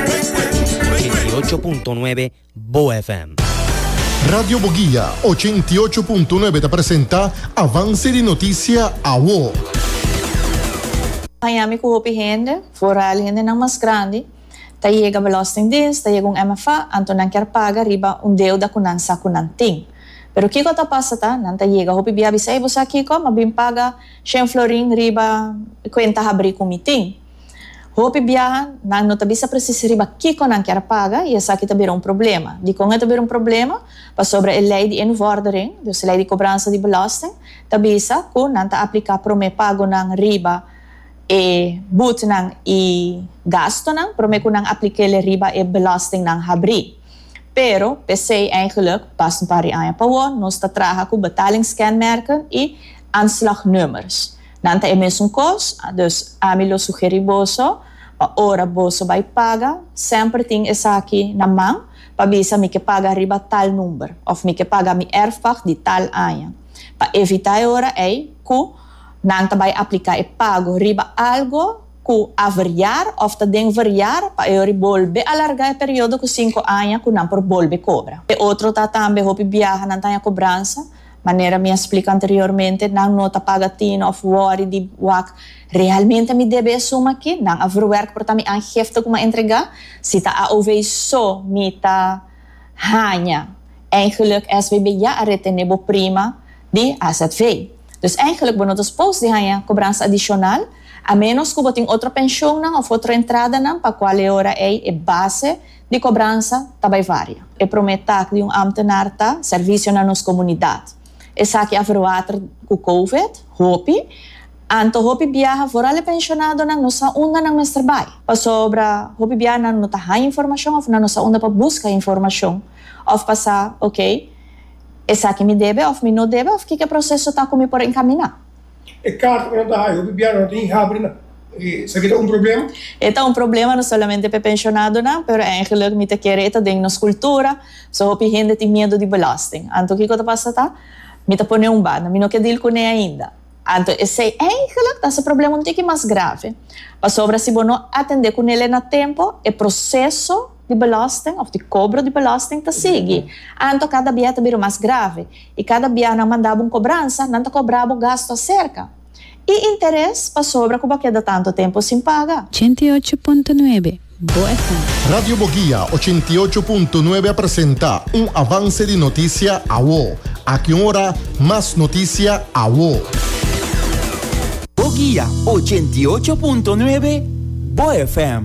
88.9 Bo FM. Radio Boguia 88.9 ta presenta Avance di Noticia Awo. Miami cu hopi hende, vooral hendenan mas grandi, ta yega Belastingdienst, ta yega un MFA, anto nan kier paga riba un deuda cu nan sa cu nan tin. Pero kico ta pasa ta, nan ta yega hopi bia bisa, ey bo sa kico, m'a bin paga shen florin riba e cuenta habri cu mi tin. Hopi biaha, nan no ta bisa presis riba kiko nan kier a paga i esaki ta bira un problema. Dikon e ta bira un problema? Pasobra e lei di e nu vòrdering, dus e lei di kobransa di belòsting, ta bisa ku nan ta apliká promé pagonan riba e butnan i gastunan promé ku nan apliká el riba e belòstingnan habrí. Pero, p'esei eigelijk, pas un par di aña pa wou, nos ta traha ku betalingskenmerken i aanslagnummers. Nan ta e mesun kos, dus ami lo sugeri boso pa ora boso bai paga semper tin esaki na man pa bisa mi ke paga riba tal number of mi ke paga mi erfpag di tal aña pa evita e ora ei ku nan ta bai aplika e pago riba algo ku a verjar of ta den verjar pa e ora bolbe alarga e periodo ku sinku aña ku nan por bolbe kobra. E otro ta tambe hopi biaha nan ta haña kobransa Manera mi a splica anteriormente, nan no ta paga tin of worry di wak, Realmente mi debe e suma aki? Nan a verwerk por ta mi aangifte cu mi a entrega? Si ta AOV so mi ta haña? Eigenlijk SBB ya a retene bo prima di azv. Dus eigenlijk bo no ta supos di haña cobransa adicional, a menos cu bo tin otro pensioennan of otro entradanan pa cual e ora ey e base di kobransa ta bai varia. E promé tak di un ámtenar ta sèrvisio na nos komunidat. Esaki a verwater ku kowid hopi, anto hopi biaha foral e penshonado-nan no sa unda nan mester bai. Pasobra hopi biaha nan no ta haña informashon òf nan no sa unda pa buska informashon òf pa sa, ok, esaki mi debe òf mi no debe òf kiko e proseso ta ku mi por enkaminá. E karta ku nan ta haya hopi biaha no ta hinga habri nan. Esaki ta un problema? E ta un problema no solamente pa e pensionadonan, pero eigenlijk mi ta kere e ta den nos kultura, so hopi hende tin miedu di belasting. Anto kiko ta pasa ta, mi ta pone un banda, mi no ke dil kuné ainda. Anto esei eigenlijk ta hasi e problema un tiki mas grave, pasobra si bo no atendé kunele na tempo, e proseso, di belasting of di kobro di belasting ta sigui. Anto kada bia ta bira mas grave i kada bia nan manda bo un kobransa nan ta kobra bo gastu aserka i interes pasobra ku bo a keda tantu tempu sin paga. Ochenta i ocho punto nuebe Bo FM. Radio Boguia ochenta i ocho punto nuebe a presenta un avance di noticia awo. Aki un ora mas noticia awo. Boguia ochenta i ocho punto nuebe Bo FM.